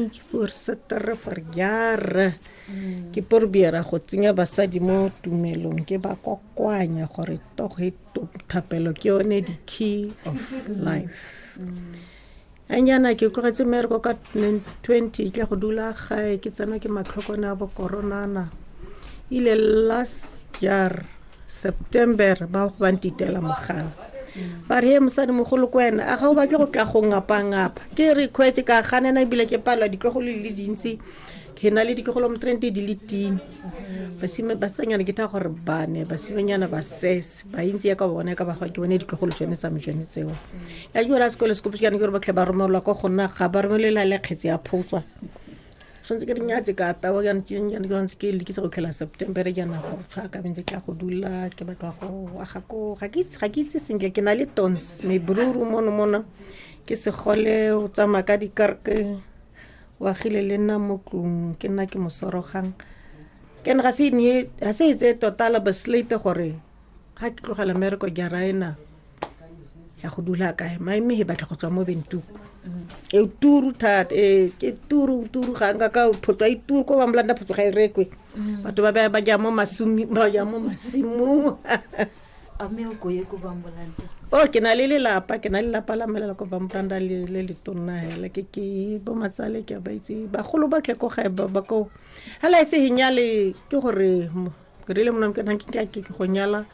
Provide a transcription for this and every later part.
ke for setere for jara mm. ke porbiera go tsenya basadi mo tumelong ke ba kokoanya gore togo e thapelo ke yone the key of mm. life mm. anyana ke tlogetse mereko ka 20 tla go dula gae ke tsena ke matlhokone a bokoronana ile last year september ba go bantitela mogala ba re he mosadi mogolo ko wena a ga o batle go tla go ngapangapa ke re kgwetse ka ganena ebile ke palelwa ditlogolo le dintsi ke na le ditlogolo mo trente di le tine basenyana ke tha gore bane basimenyana ba sese ba intsi ya ka bona ya ka bagwa ke bone ditlogolo tsone tsame tsone tseo ya ke gore a sekolo se kopetsana ke gore batlhe ba romelelwa ko gonna ga ba romelela le kgetse ya photswa tshwanetse ke rinya tse ka tawa ke ntse ke lekisa go tlhela september ke yana go tshwa ka bentse ke go dula ke batla go wa ga ko ga ke ga ke itse sentle ke na le tons me bruru mono mono ke se gole o tsama ka di karke wa gile le nna mo tlung ke nna ke mosorogang ke ne ga se ne ga se itse tota la baslate gore ga ke tlogela mmereko jaraena ya go dula kae maime he batla go tswa mo bentuku e turu thata e ke turu turu ga nka ka photso e turu ko ba mlanda photso ga e rekwe mm. batho ba ba ja mo masumi ba ja mo masimong a me o ko ye ko ba mlanda o oh, ke na le lelapa ke na le lelapa la melela ko ba mlanda le le le tonna hela ke ke bo matsale ke ba itse ba golo ba tle ko ga ba ba ko hala e se hinyale ke gore ke rile mona ke nang ke ke go nyala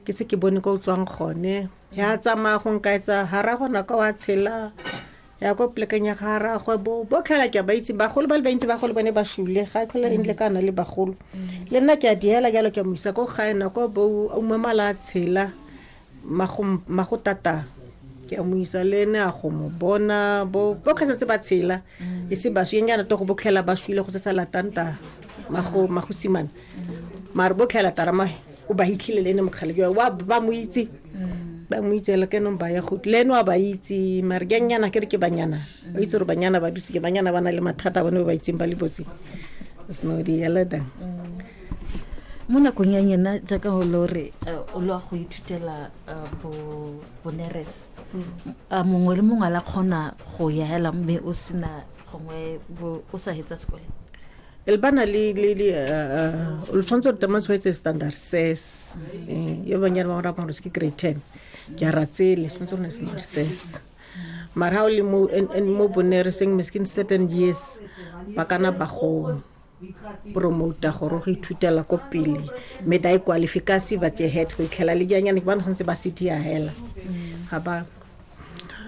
ke se ke bone ko tswang gone ya tsamaya go nka etsa ha ra gona ka wa tshela ya ko plekeng ya ga ra go bo bo tlhala ke ba itse bagolo ba le ba itse bagolo bone ba shule ga tlhola eng le kana le bagolo le nna ke a diela jalo ke mo isa ko ga ena ko bo o mamala tshela magotata ke a mo isa le ene a go mo bona bo ka setse ba tshela mm. e se baswi eng yana to go botlhela ba shwile go setsa latanta mago magosimana mm. mare botlhela tarama o ba hitlhile le ene mokgale jwa wa ba mo itse mm. ba mo itse le kenong ba ya go le ene wa ba itse mare ke nyana ke re ke banyana ba itse gore banyana ba duse ke banyana ba na le mathata bone ba ba itseng ba le bosi sno di eleda mo nakong ya nyena jaaka go le gore eh, o lwa go ithutela eh, bo- boneres a mongwe le mongwe a la kgona go ya hela mme o sena gongwe bo- o sa hetsa sekole e le bana le le le eh, eh, lo tshwanetse gore tama tshwanetse standard ses Eh, yo banyana ba go rapa gore se ke grade ten ke a ratsele tshwanetse gore ne standard ses mara ga o le mo en- en- mo bonereseng miskin certain years ba kana ba go promouta gore go ithutela ko pele mme da ikwalifikasi ba jehet go itlhela le janyane ke bana santse ba se dia hela ga ba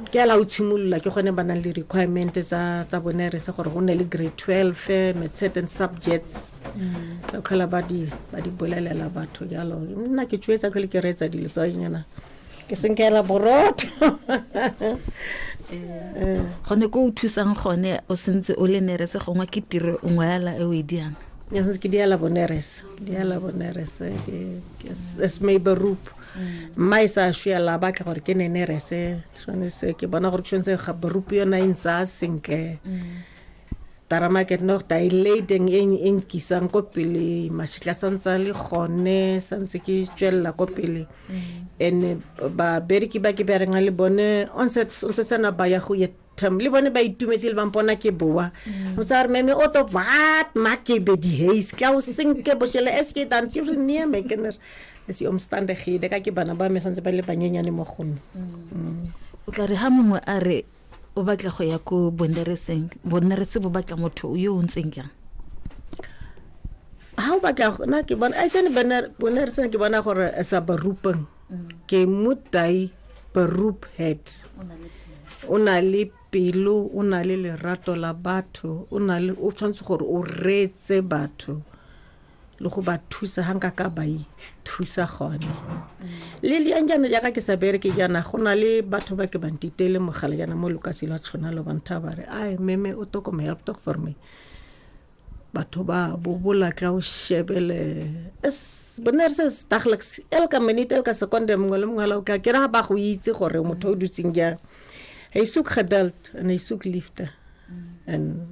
ke ala o tshimolola ke gone ba nang le requirement tsa tsa bone re se gore go nne le grade 12 me certain subjects ka tlhola ba di ba di bolelela batho jalo nna ke tšwetsa tlhole ke reetsa dilo tsanyana ke senkela borotho eh. gone ko o thusang gone o sentse o le nerese gongwe ke tiro nngwe yala e o e diang ya sentse ke diala bonerese diala bonerese as maybe roop mm. mma e sa shuyela ba tla gore ke ne nerese tshwanetse ke bona gore tshwanetse ga borup yona e ntsa sentle mm. tarama ke no dilating e e nkisang ko pele mashitla sa ntse le gone sa ntse ke tswelela ko pele mm. and ba bereki ba ke bereng le bone on se on se sana ba ya go ye term le bone ba itumetse le bampona ke boa mm. o tsa re meme o to what ma ke be di haze ka o sinke bo shele es ke dan tsure nie me kener es om stande ge de ka ke bana ba me santse ba le banyenyane mo gone mm. o tla re ha mongwe a re o batla go ya ko bonnereseng bonnerese bo batla motho yo o ntseng jang ha o batla na ke bona a tsene bonnereseng ke bona gore sa barupeng ke mutai barup head o na le pelo o na le lerato la batho o na le o tshwanetse gore o reetse batho le go ba thusa ga nka ka ba ithusa gone le leyang jaana jaaka ke sa bereke jaana go na le batho ba ke bantitele mogala jaana mo lukase lwa tshwana lo bantha ba re ai meme o tokome help talk for me batho ba bobola tla o shebele es bone re se staglex el ka minute el ka seconde mongwe le mongwe la o tla ke ra ba go itse gore motho o dutseng jang e isuk gedelt and e isuk lifter and